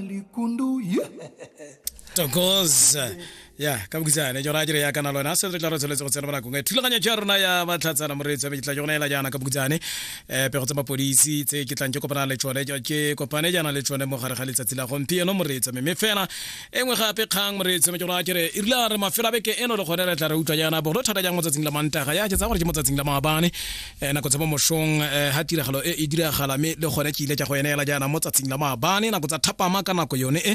likundu yeah. tokos ya ka bokitsane ke raya dire ya kana lona se re tla re tsholetse go tsena bonakong e thulaganyo ja rona ya matlhatsana moreetsi wa meketla ke gona ela jaana ka bokitsane um pego tsa mapodisi tse ke tlang ke kopana le tsone ke kopane jaana le tsone mo gare ga letsatsi la gompieno moreetsi mme fela e nngwe gape kgang moreetsi ke raya kere e rile re mafelo a beke eno le gone re tla re utlwa jaana bogolo thata jang mo tsatsing la mantaga ya ke tsa gore ke mo tsatsing la maabane eh, nako tsa mo mosong eh, ha tiragalo e e diragala me le gone ke ile tsa go eneela jaana mo tsatsing la maabane nako tsa thapama ka nako yone e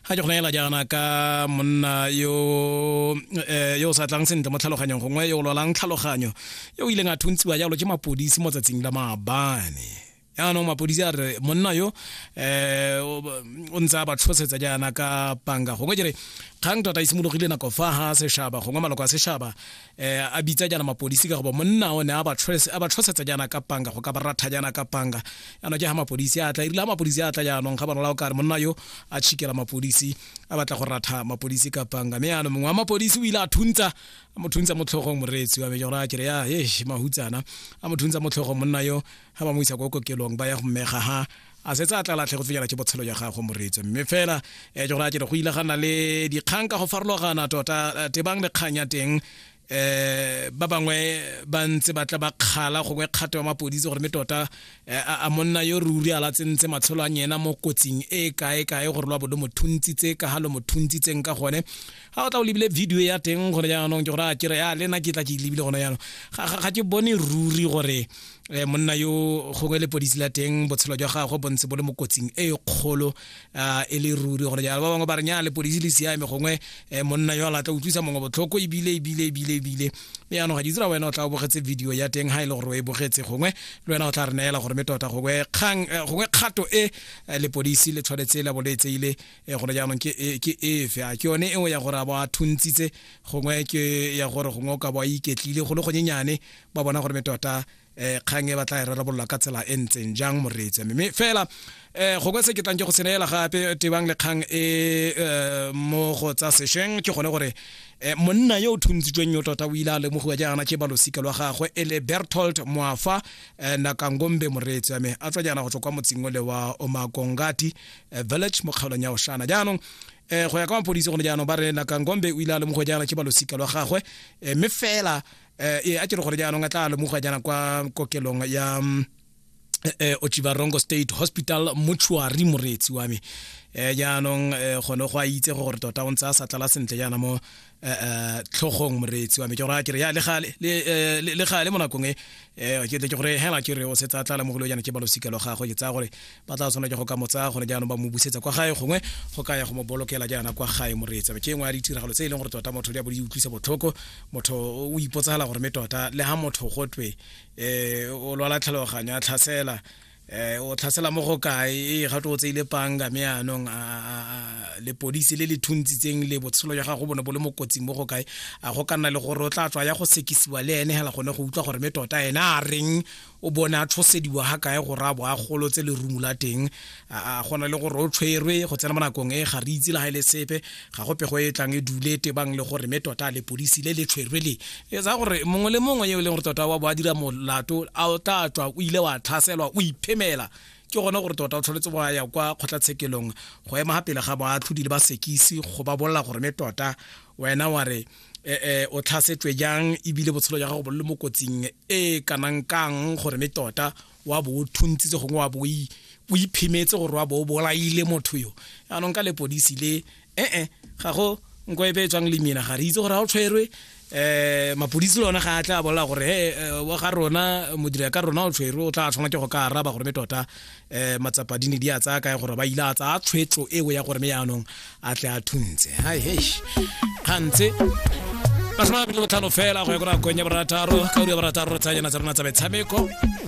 ga ke go neela jaana ka monna yo eh, yo sa tlang sentle mo tlhaloganyong gongwe yo o lwalang tlhaloganyo yo o ileng a thuntsiwa jalo ke mapodisi mo tsatsing la maabane yaanong mapodisi a re monna yo um o ntse a ba tlhosetsa jaana ka panga gongwe jere kgang tota e simologile nako fa ga sešhaba gongwe maloko a sešhaba um a bitsa jaana mapodisi ka goba monna o ne a ba tlhosetsa jaana ka panga go ka ba ratha jaana ka panga yaanong ke ga mapodisi a tla erile ga mapodisi a tla jaanong ga banola o ka re monna yo a tšhikela mapodisi a batla go ratha mapodisi ka panga mme yaanong mongwe wa mapodisi o ile a thuntsa a mo thuntsa mo tlhogong moreetsi wa me gore a kere ya e mahutsana a mo thuntsa mo tlhogong monna yo ga ba mo isa ko kokelong ba ya go mmega ha a setse a tla latlhe go finyela ke botshelo ya gagwe moretse mme fela um eh, ke gore a kere go ile ga nna le dikgang ka go farologana tota eh, tebang le kgang ya teng eh ba bangwe ba ntse ba tla ba kgala gongwe kgato ya mapodisi gore me tota eh, a monna yo ruri a latsentse matshelo a nyena mo kotsing e kae kae gore lwa bodo mothuntsi tse ka ha lo mothuntsi tseng ka gone ga o tla o lebile video ya teng gore jaanong ke gore a kere ya le nna ke tla ke lebile gona jaanong ga ke bone ruri gore um monna yo gongwe lepodisi la teng botshelo jwa gagwe bontse bo le mo kotsing e kgolo um e le ruri gone jalo ba bangwe ba re nya lepodisi le siame gongwe um monna yo a latla utlwisa mongwe botlhoko ebile ebile ebile ebile mme jaanong ga ke itse ra wena o tla o bogetse video ya teng ga e le gore o e bogetse gongwe le wena o tla re neela gore me tota gongwe kgato e lepodisi le tshwanetse la bo le tseile e gona jaanong ke e- ke efe a ke yone eo ya gore a ba a thuntsitse gongwe ke ya gore gongwe o ka bo a iketlile go le gonyenyane ba bona gore me tota um kgang e ba tla e rarabololwa ka tsela e ntseng jang moreetsi mme mme fela um gongwe se ke tlang ke go seneela gape tebang le kgang e eh, mo go tsa sešweng ke gone gore eh, monna yo o thuntshitsweng yo tota o ile a lemogiwa jaana ke balosika lwa gagwe e le bertolt moafa eh, nakangombe moreetsi wa me a tswa jaana go tswa kwa motseng ole wa omakongati eh, village mo kgaolong ya oshana jaanong eh, go ya ka mapodisi gone jaanong ba re nakangombe o ile a lemogo jaana ke balosika lwa gagwe eh, mme fela eh, e a kere gore jaanong a tla lemoga jaana kwa kokelong ya mm, eh, eh, ochivarongo state hospital mortuary moreetsi wa me eh, jaanong eh, gone go a itse gore tota o ntse a sa tlala sentle jaana mo tlhogong moreetsi wa me ke gore ke re ya le gale le gale mo nakong e eh, ke tle ke gore hela ke re o setsa tla lamogolo yana ke balosika lo gagwe ke tsaya gore ba tla tshwana ke go ka mo tsaya gone jaanong ba mo busetsa kwa gae gongwe go ka ya go mo bolokela jaana kwa gae moreetsi ke engwe ya ditiragalo tse e leng gore tota motho di a bo di utlwisa botlhoko motho o ipotsagala gore me tota le ga motho gotwe um o lwala tlhaloganyo a tlhasela eh o tlhasela mo go kae e ga tlo tseile panga me anong a le polisi le le thuntsitseng le botshelo ya gago bone bo le mo kotsing mo go kae a go kana le gore o tla tswa ya go sekisiwa le ene hela gone go utlwa gore me tota ene a reng o bone a tshosediwa ga kae go rabo a golo tse le rumu la teng a gona le gore o tshwerwe go tsena mo nakong e ga re itse le ga ile e sepe ga go pego e tlang e dule tebang le gore me tota lepodisi le le tshwerwe le e tsa gore mongwe le mongwe yo e leng gore tota wa bo a dira molato a o tla tswa o ile wa tlhaselwa o iphemela ke gone gore tota o tshwanetse go ya kwa kgotlatshekelong go ema ga pele ga boatlhodi le basekisi go ba bolela gore me tota wena wa re eh, eh, o tlhasetswe jang ebile botshelo jwa gago bo le mo kotsing e kanang kang gore me tota wa bo o thuntsitse gongwe wa bo o iphimetse gore wa bo o bolaile motho yo yaanong ka lepodisi le ee ga go nko e beetswang le mina ga re itse gore ga o tshwerwe um mapodisi le one ga a tla bolela gore he eh, wa ga rona modira ka rona o tshwerwe o tla tshwana ke go ka araba gore me tota um matsapa di ne di a tsaya kae gore ba ile a tsaya tshwetso eo ya gore me yaanong a tle a thuntse hai hesh gantse masome a mabedi botlhano fela go ya ko nakong ya borataro ka uri ya borataro re tsayanyana tsa rona tsa metshameko